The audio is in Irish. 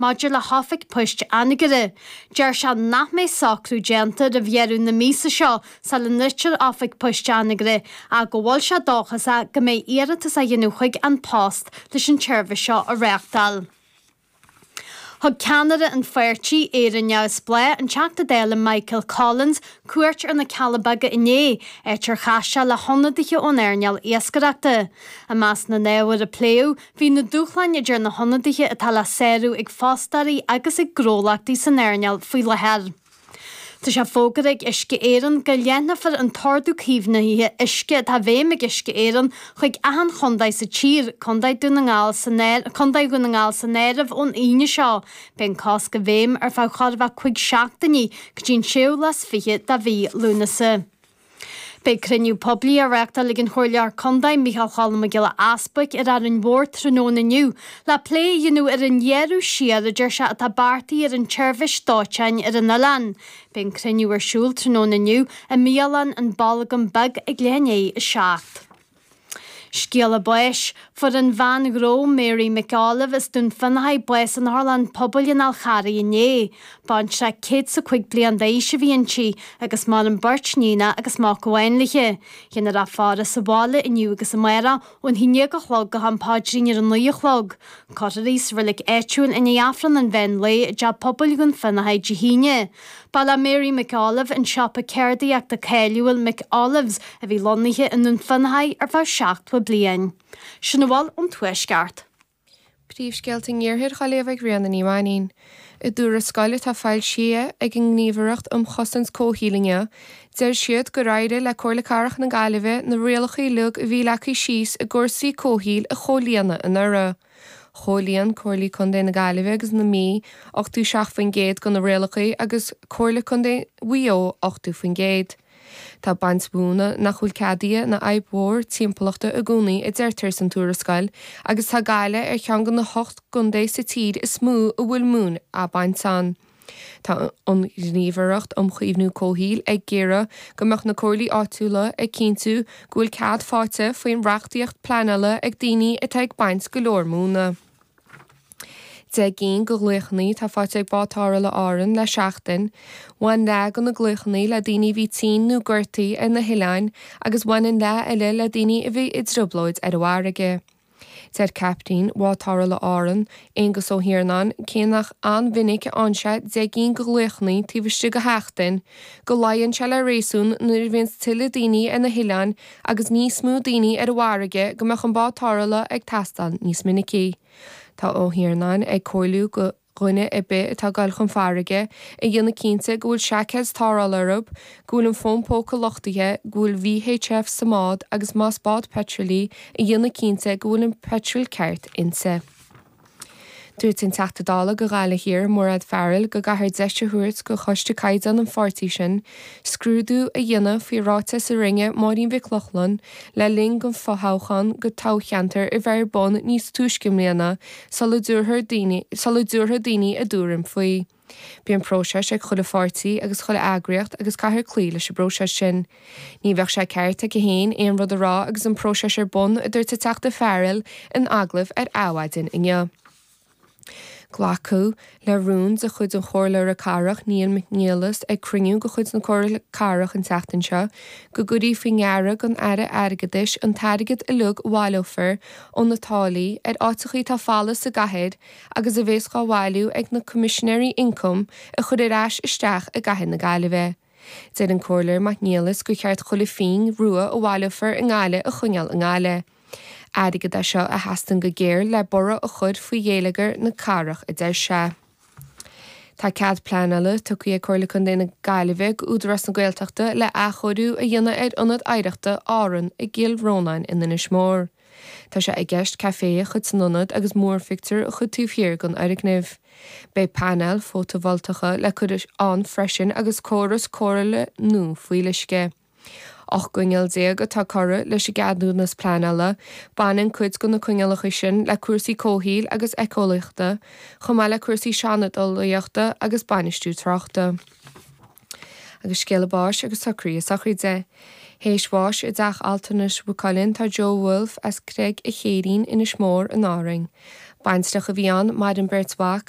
maidir le hOifig Poist Anagaire. Deir sé nach mbeidh socrú déanta roimh dheireadh na míosa seo sula ndruidtear Oifig Poist Anagaire ach go bhfuil sé dóchasach go mbeidh iarratas á dhéanamh chuig An Post leis an tseirbhís seo a réachtáil. Thug ceannaire an pháirtí Éire Neamhspleách, an Teachta Dála Michael Collins, cuairt ar na Cealla Beaga inné, áit ar chas sé le hionadaithe ón earnáil iascaireachta. I measc na n-ábhar a pléadh, Bhí na dúshláin idir na hionadaithe atá le sárú ag fostóirí agus ag gnólachtaí san earnáil faoi láthair. Tá sé fógartha ag Uisce Éireann go leathnófar an t-ordú caomhnaithe uisce atá i bhfeidhm ag Uisce Éireann chuig achan chontae sa tír, Contae Dhún na nGall san áireamh, Contae Dhún na nGall san áireamh, ón Aoine seo. Beidh an cosc i bhfeidhm ar feadh chóir a bheith 5 seachtainí, go dtí an séú lá is fiche dá mhí Lúnasa. Beidh cruinniú poiblí á reachtáil ag an Chomhairleoir Contae Mícheál Cholm Mac Giolla Easbuic ar Árainn Mhór tráthnóna inniu le plé a dhéanamh ar an ghearradh siar a deir sé atá beartaithe ar an tseirbhís dóiteáin ar an oileán. Beidh an cruinniú ar siúl tráthnóna inniu i mbialann An Bolgam Beag ag leath i ndiaidh a 7. Scéala báis, Fuair an bhean ghnó Mary McAuliffe as Dún Fionnachaidh bás in otharlann pobail in An Fhál Carraigh inné. Baintreach céad is a cúig bliain d'aois a bhí inti agus maireann beirt níonacha agus mac amháin léithe. Déanfar a faire sa bhaile inniu agus amárach ón a haon déag a chlog go ham paidrín ar a naoi a chlog. Cuirfear í sa reilig áitiúil i ndiaidh Aifreann an mheán lae i dteach pobail Dhún Fionnachaidh Dé hAoine. Ba le Mary McAuliffe an siopa ceardaíochta cáiliúil McAuliffe's a bhí lonnaithe i nDún Fionnachaidh ar feadh seachtó bliain. Sin a bhfuil ón Tuaisceart. Príomhscéalta an Iarthair go léamh ag Ríona Ní Mhainnín. I dtuarascáil atá foilsithe ag an nGníomhaireacht um Chosaint Comhshaoil inniu, deir siad gur éirigh le Comhairle Cathrach na Gaillimhe na rialacha uilig a bhí leagtha síos i gcúrsaí comhshaoil a chomhlíonadh anuraidh. Chomhlíon Comhairlí Contae na Gaillimhe agus na Mí 87% de na rialacha agus Comhairle Contae Mhaigh Eo 80%. Tá baint mhóna nach bhfuil ceadaithe ina fhadhb mhór timpeallachta i gcónaí a deirtear san tuarascáil agus tá Gaillimh ar cheann de na hocht gcontae sa tír is mó a bhfuil móin á baint ann. Tá an Ghníomhaireacht um Chaomhnú Comhshaoil ag iarraidh go mbeadh na comhairlí áitiúla ag cinntiú go bhfuil cead faighte faoin reachtaíocht pleanála ag daoine atá ag baint go leor móna. Deich gcinn go ghlaochannaí atá faighte ag Bád Tarrthála Árann le seachtain. Bhain leath go na glaochannaí le daoine a bhí tinn nó gortaithe ar na hoileáin agus bhain an leath eile le daoine a bhí i dtrioblóid ar an bhfarraige. Deir captaen Bhád Tarrthála Árann, Aongus Ó hIarnáin, cé nach an-mhinic a fhaigheann sé deich gcinn de ghlaochanna taobh istigh de sheachtain, go luíonn sé le réasún nuair a bhíonns tuilleadh daoine ar na hoileáin agus níos mó daoine ar an bhfarraige go mbeadh an Bád Tarrthála ag teastáil níos minicí. Tá Ó hIarnáin ag comhairliú go. dhuine ar bith atá ag dul chun farraige, a dhéanamh cinnte go bhfuil seaiceid tarrthála orthub, go bhfuil an fón póca luchtaithe, go bhfuil VHF sa mbád agus más bád peitril í, a dhéanamh cinnte go bhfuil an peitril ceart inti. Dúirt an Teachta Dála go Ghaillimh Thiar, Mairéad Farrell go gcaithfear deis a thabhairt go Choiste Caighdeán an pháirtí sin scrúdú a dhéanamh faoi ráiteas a rinne Máirín Mhic Lochlainn le linn don fothoghchán don toghcheantar a bheith ar bun níos túisce i mbliana sula dtabharfadh daoine sula dtabharfadh daoine a dtuairim faoi. Bíonn próiseas ag chuile pháirtí agus chuile eagraíocht agus caithfear cloí leis an bpróiseas sin. Ní bheadh sé ceart aici féin aon rud a rá agus an próiseas ar bun, a dúirt an Teachta Farrell in agallamh ar Adhmhaidin inniu. Glacadh. Le rún de chuid an Chomhairleora Cathrach, Níall McNelis, ag cruinniú de chuid na Comhairle Cathrach an tseachtain seo, go gcuirfí faoi ndeara don Aire Airgeadais an t-airgead uilig a bhaileofar ó na táillí ar áiteachaí atá folamh sa gcathair agus a bheas dhá bhailiú ag na Coimisinéirí Ioncaim a chur ar ais isteach i gcathair na Gaillimhe. Deir an Comhairleoir Mac Niallais gur cheart chuile phingin rua a bhaileofar i nGaillimh a choinneáil i nGaillimh. Airgead é seo a theastaíonn go géar le borradh a chur faoi ghéilleagar na cathrach a deir sé. Tá cead pleanála tugtha ag Comhairle Contae na Gaillimhe go Údarás na Gaeltachta le athchóiriú a dhéanamh ar Ionad Oidhreachta Árann i gCill Rónáin in Inis Mór. Tá sé i gceist café a chur san ionad agus múrphictiúr a chur taobh thiar den fhoirgneamh. Beidh painéil fótavoltacha le cur ann freisin agus córas cóireála nua fuíolluisce. 18 gcoinníoll atá curtha leis an gceadúnas pleanála, baineann cuid de na coinníollacha sin le cúrsaí comhshaoil agus éiceolaíochta, chomh maith le cúrsaí seandálaíochta agus bainistiú tráchta. Agus scéalta báis agus socruithe sochraide théis bháis i dteach altranais Mhaigh Cuilinn tá Joe Woulfe as Creig an Chéirín, Inis Mór, in Árainn. Baintreach a bhí ann, maireann beirt mhac,